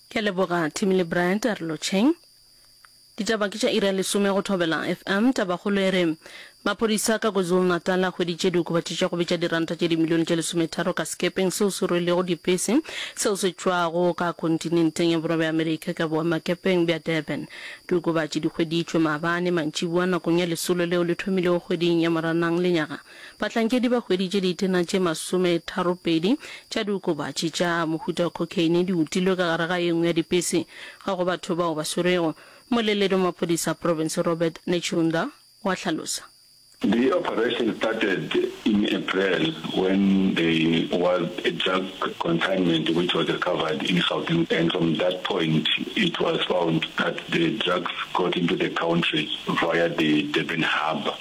Ke leboga Timmy le Bryant a re lotšheng. Ditaba ke tša iri ya lesome go Thobela FM. Tabakgolo e re maphodisa ka KwaZulu-Natal a hweditše diokobatši tša go bitša diranta tše dimilione tše lesometharo ka sekepeng seo se rwelego dipese seo se tšwago ka kontinenteng ya Borwa bja Amerika ka boemakepeng bja Durban. Diokobatši di hweditšwe maabane mantšibua nakong ya lesolo leo le thomilego kgweding ya Moranang lenyaga. Bahlankedi ba hweditše ditena tše masometharopedi tša diokobatši tša mohuta wa cocaine di utilwe ka gare ga e nngwe ya dipese. Ga go batho bao ba swerwego, moleledi wa maphodisa a profense Robert Netshiunda o a hlalosa. The operation started in April when there was a drug consignment which was recovered in Gauteng and from that point it was found that the drugs got into the country via the Durban harbour.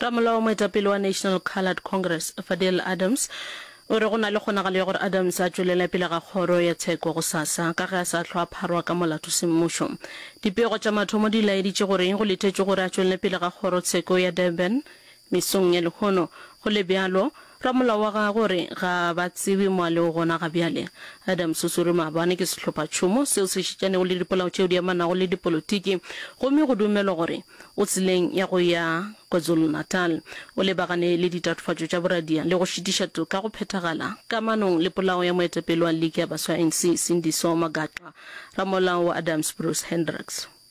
Ramolao, moetapele wa National Coloured Congress, Fadil Adams, o re go na le kgonagalo ya gore Adams a tšwelele pele ga kgoro ya tsheko gosasa ka ge a sa hlwa a pharwa ka molato semmušo. Dipego tša mathomo di laeditše gore go lethetšwe gore a tšwelele pele ga kgoro tsheko ya Durban mesong ya lehono. Go le bjalo, Ramolao wa gagwe o re, Ga ba tsebe mo a lego gona ga bjale. Adam Susuri maabane ke sehlophatšhomo seo se šetšanego le dipolao tšeo di amanago le dipolotiki gomme go dumelwa gore o tseleng ya go ya KwaZulu-Natal. O lebagane le ditatofatšo tša boradia le go šitiša toka go phethagala kamanong le polao ya moetapele wa liki ya baswa ya ANC, Sindiso Magaqa. Ramolao wa Adams Bruce Hendricks.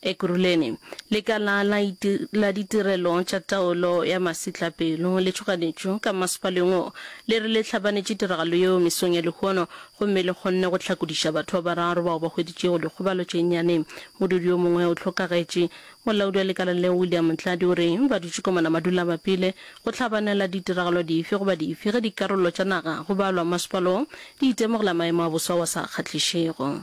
Ekurhuleni, lekala la la ditirelo tša taolo ya masetlapelo le tšhoganetšo ka masepaleng wo le re le hlabanetše tiragalo yeo mesong ya lehono gomme le kgonne go hlakodiša batho ba bararo bao ba hweditšego dikgobalo tše nnyane. Modudi yo mongwe o hlokagetše. Molaodi wa lekala leo William Ntladi o re ba dutše komana ba dula ba pile go hlabanela ditiragalo dife goba dife ge dikarolo tša naga go balwa masepala wo di itemogela maemo a boso ao a sa kgahlišego.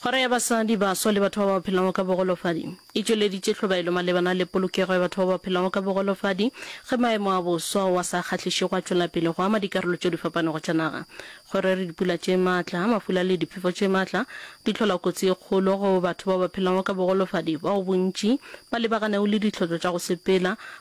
Kgoro ya Basadi, Baswa le Batho ba ba Phelago ka Bogolofadi e tšweleditše tlhobaelo malebana le polokego ya batho ba ba phelago ka bogolofadi ge maemo a boswa ao a sa kgahlišego a tšwela pele go ama dikarolo tše di fapanego tša naga. Go re re dipula tše matla, mafula le diphefo tše matla di hlola kotsi e kgolo go batho ba ba phelago ka bogolofadi bao bontši ba lebaganegu le ditlhotšo tša go sepela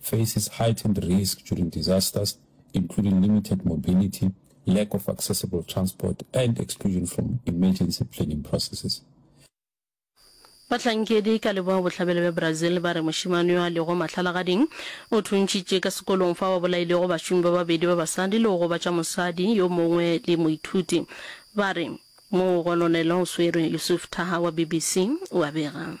faces heightened risk during disasters, including limited mobility, lack of accessible transport, and exclusion from emergency planning processes. Bahlankedi ka leboa-bohlabela bja Brazil ba re mošemane yo a lego mahlalagading o thuntšitše ka sekolong fao a bolailego bašomi ba babedi ba basadi le go gobatša mosadi yo mongwe le moithuti. Ba re mogononelo o swerwe. Yusuf Thaha wa BBC o a bega.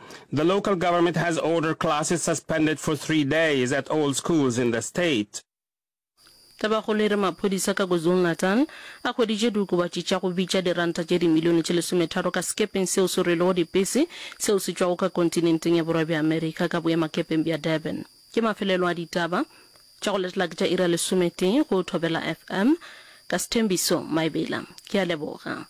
The local government has ordered classes suspended for three days at all schools in the state. Tabakgolo e re maphodisa ka KwaZulu-Natal a hweditše diokobatši tša go bitša diranta tše dimilione tše lesometharo ka sekepeng seo se rwelego dipese seo se tšwago ka kontinenteng ya Borwa bja Amerika ka boemakepeng bja Durban. Ke mafelelo a ditaba tša go latela ke tša iri ya lesometee go Thobela FM. Ka sethembiso Maebela ke a leboga.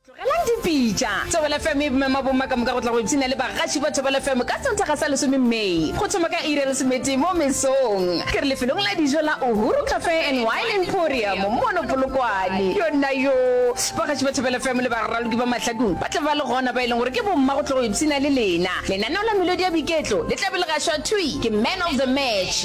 Tlogelang dipitša. Thobela FM e mema bomma ka moka go tla go ipshina le bagatši ba Thobela FM ka Sontaga sa lesome May, go thoma ka iri ya lesometee mo mesong. Ke re lefelong la dijo la Uhuru Cafe and Wine Emporium mono Polokwane. Yonnayoo! Bagatši ba Thobela FM le baraloki ba mahlakung ba tla ba le gona, ba e leng gore ke bomma go tlo go ipshina le lena. Lenaneo la melodi ya boiketlo le tla be le gašwa thwi ke Man of the Match.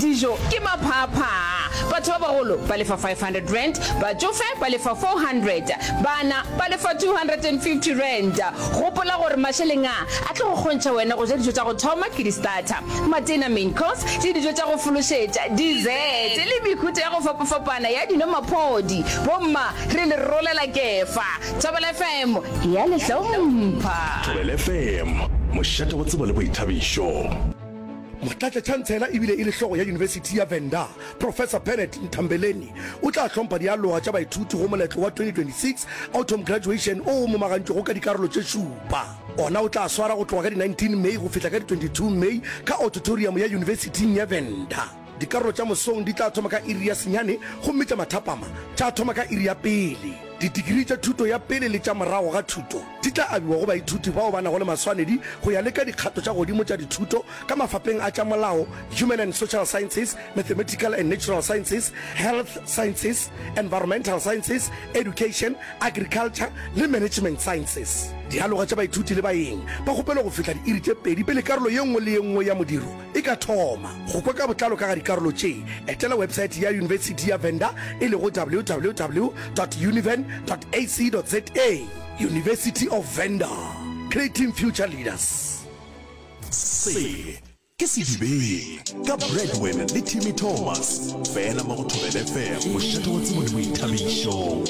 Dijo ke maphaaphaa. Batho ba bagolo ba lefa R500, batšofe ba lefa R400, bana ba lefa R250. Gopola gore mašeleng a a tlo go kgontšha wena go ja dijo tša go thoma ke di-starter, matena, main course, le dijo tša go fološetša, dessert, le mehuta ya go fapafapana ya dino maphodi. Bomma re le rolela kefa. Thobela FM e a le hlompha. Thobela FM, mošate wa tsebo le boithabišo. Motlatšatšhantsela e bile e le hlogo ya Yunibesithi ya Venda, Professor Bernard Ntambeleni o tla hlompha dialoga tša baithuti go moletlo wa 2026 Autumn Graduation o o momagantšwego ka dikarolo tše šupa. Ona o tla swara go tloga ka di 19 May go fihla ka di 22 May ka ototoriamo ya Yunibesithing ya Venda. Dikarolo tša mosong di tla thoma ka iri ya senyane gomme tša mathapama tša thoma ka iri ya pele. Didigiri tša thuto ya pele le tša morago ga thuto. di tla abiwa go baithuti bao ba nago le maswanedi go ya le ka dikgato tša godimo tša dithuto ka mafapeng a tša molao, Human and Social Sciences, Mathematical and Natural Sciences, Health Sciences, Environmental Sciences, Education, Agriculture le Management Sciences. Dialoga tša baithuti le baeng ba kgopelo go fihla diiri tše pedi pele karolo ye nngwe le ye nngwe ya modiro e ka thoma. Go kwa ka botlalo ka ga dikarolo tše, etela websaete ya Yunibesithi ya Venda e lego www dot univen dot ac dot za. University of Venda, creating future leaders. Se ke sedibeng ka Breadwin le Timmy Thomas fela mo go Thobela FM, mošate wa tsebo le boithabišo.